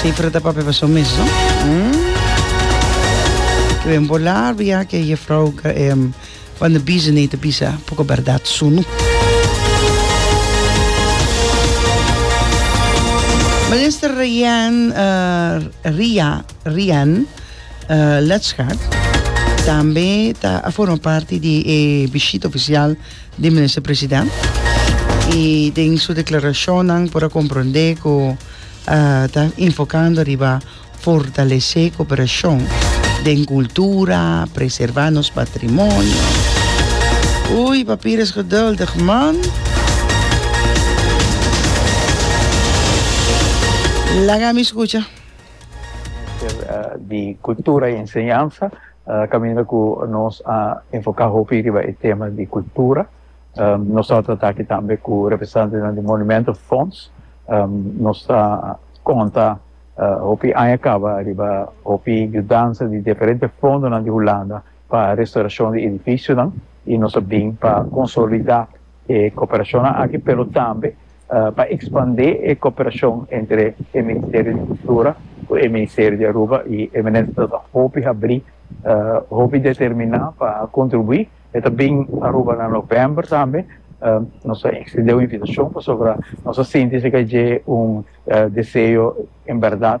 Sifra ta papia paso mes, no? Mm. Kwen bolar bia ke je vrouw um, van de bizen nee te bisa poco verdad sunu. Minister Rian, uh, Ria, Rian uh, Letschart tambe ta a forma parte di e visita oficial di Minister President y den su declaracionnan por a comprende cu a ta enfocando riba fortalece cooperacion den cultura, preserva nos patrimonio. Oei, papier is geduldig man. Laga mi scucha. Minister di Cultura y Enseñanza. Caminda cu nos a enfoca hopi riba e tema di cultura. Nos a trata aki tambe cu representantenan di Monumento Fonds. Nos ta conta hopi aña caba riba hopi yudansa di diferente fondonan di Hulanda pa restauracion di edificionan y nos a bin pa consolida e cooperacionnan aki pero tambe pa ekspandé e koperashon entre e Ministerio di Kultura ku e Ministerio di Aruba i e minister ta dor hopi habrí, hopi determiná pa kontribuí. E ta bin Aruba na novèmber tambe. Nos a ekstendé un invitashon pasobra nos a sinti si ka dje un deseo en bèrdat.